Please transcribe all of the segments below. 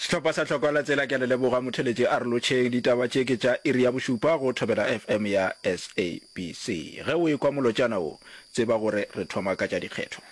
Sehlopha sa Tlhoko la Tsela ke a le leboga motheletši Arolotšheng ditaba tše ke tša iri ya bošupa go Thobela FM ya SABC. Ge o ekwa molotšana wo, tseba gore re thoma ka tša dikgetho.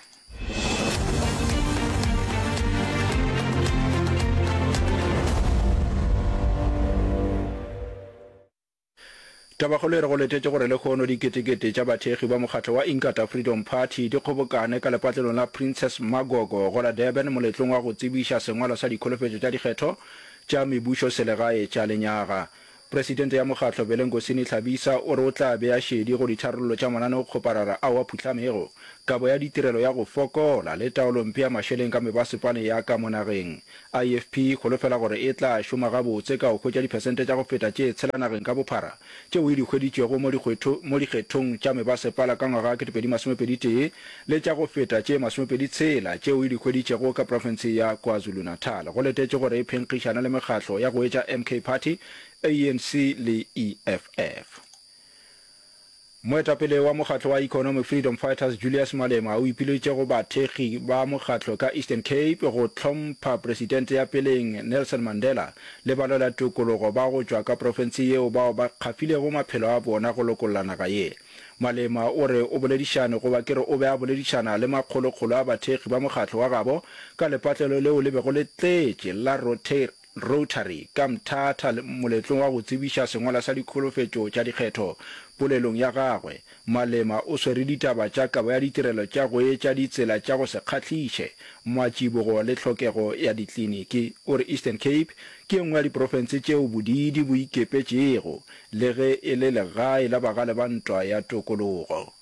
Tabakgolo e re go letetše gore lekhono diketekete tša bathekgi ba mokgatlo wa Inkatha Freedom Party di kgobokane ka lepatlelong la Princess Magogo go la Durban moletlong wa go tsebiša sengwalo sa dikholofetšo tša dikgetho tša mebušoselegae tša lenyaga. Presidente ya mokgatlo Belenkosini Tlhabisa o re o tla bea šedi go ditharollo tša mananeokgoparara ao a phuhlamego, kabo ya ditirelo ya go fokola le taolompe ya mašeleng ka mebasepaleng ya ka mo nageng. IFP e holofela gore e tla šoma gabotse ka go hwetša diphesente tša go feta tše tshela nageng ka bophara tšeo e di hweditšego mo dikgwetho mo dikgethong tša mebasepala ka ngwaga wa 2021 le tša go feta tše masomepedi tshela tšeo e di hweditšego ka profense ya KwaZulu-Natal. Go letetšwe gore e phenkgišana le mekgatlo ya go etša MK Party, ANC le EFF. Moetapele wa mokgatlo wa Economic Freedom Fighters Julius Malema o ipiletše go bathekgi ba mokgatlo ka Eastern Cape go hlompha Presidente ya peleng Nelson Mandela le balwela tokologo ba go tšwa ka profense yeo bao ba kgafilego maphelo a bona go lokolla naga ye. Malema o re o boledišane goba ke re o be a boledišana le makgolokgolo a bathekgi ba mokgatlo wa gabo ka lepatlelo leo le bego le tletše la Rotary, ka mthata le moletlong wa go tsebiša sengwala sa dikholofetšo tša dikgetho. Polelong ya gagwe, Malema o swere ditaba tša kabo ya ditirelo tša go etša ditsela tša go se kgahliše, matsibogo le tlhokego ya dikliniki. O re Eastern Cape ke e nngwe ya diprofense tšeo bodiidi bo ikepetšego le ge e le legae la bagale ba ntwa ya tokologo.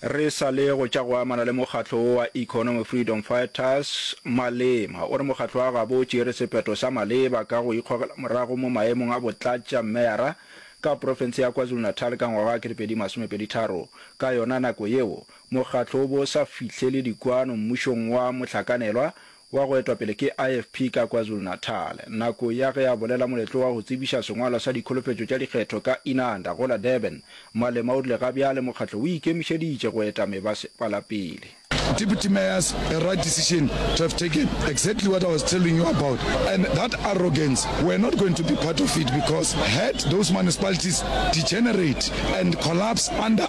Re sa le go tša go amana le mokgatlo wo wa Economy Freedom Fighters, Malema o re mokgatlo wa gabo o tšere sephetho sa maleba ka go ikgogela morago mo maemong a botlatša meyara ka profense ya KwaZulu-Natal ka ngwaga wa 2023. Ka yona nako yeo, mokgatlo o bo o sa fihlele dikwano mmušong wa mohlakanelwa wa go etwa pele ke IFP ka KwaZulu-Natal, nako ya ge a bolela moletlo wa go tsebiša sengwalwa sa dikholofetšo tša dikgetho ka Inanda go la Durban, Malema o rile ga bjale mokgatlo o ikemišeditše go eta mebasepala pele. Deputy Mayors, a right decision to have taken, exactly what I was telling you about and that arrogance we're not going to be part of it because had those municipalities degenerate and collapse under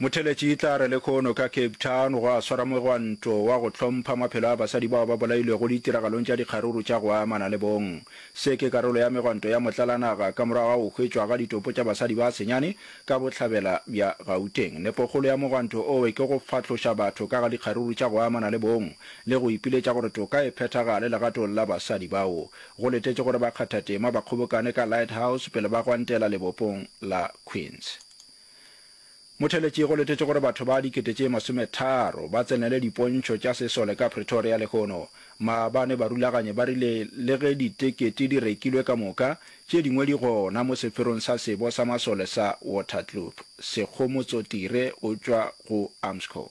Motheletši e tla re lekhono ka Cape Town gwa swara mogwanto wa go hlompha maphelo a basadi bao ba bolailwego ditiragalong tša dikgaruru tša go amana le bong. Se ke karolo ya megwanto ya motlalanaga ka morago ga go hwetšwa ga ditopo tša basadi ba senyane ka bohlabela bja Gauteng. Nepokgolo ya mogwanto owe ke go fahloša batho ka ga dikgaruru tša go amana le bong le go ipiletša gore toka e phethagale legatong la basadi bao go letetše gore bakgathatema ba kgobokane ka Lighthouse pele ba gwantela lebopong la Queens. Motheletši go letetšwe gore batho ba dikete tše masometharo ba tsenele dipontšho tša sesole ka Pretoria lehono. Maabane barulaganyi ba rile le ge ditekete di rekilwe ka moka, tše dingwe di gona mo sepherong sa sebo sa masole sa Waterkloof. Sekgomotsotire o tšwa go Armscor.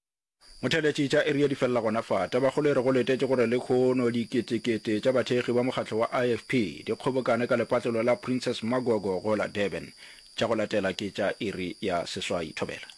Motheeletši tša Area di felela gona fa. Tabakgolo e re go letetše gore lekhono diketekete tša bathekgi ba mokgatlo wa IFP di kgobokane ka lepatlelo la Princess Magogo go la Durban. Tša go latela ke tša iri ya seswai thobela.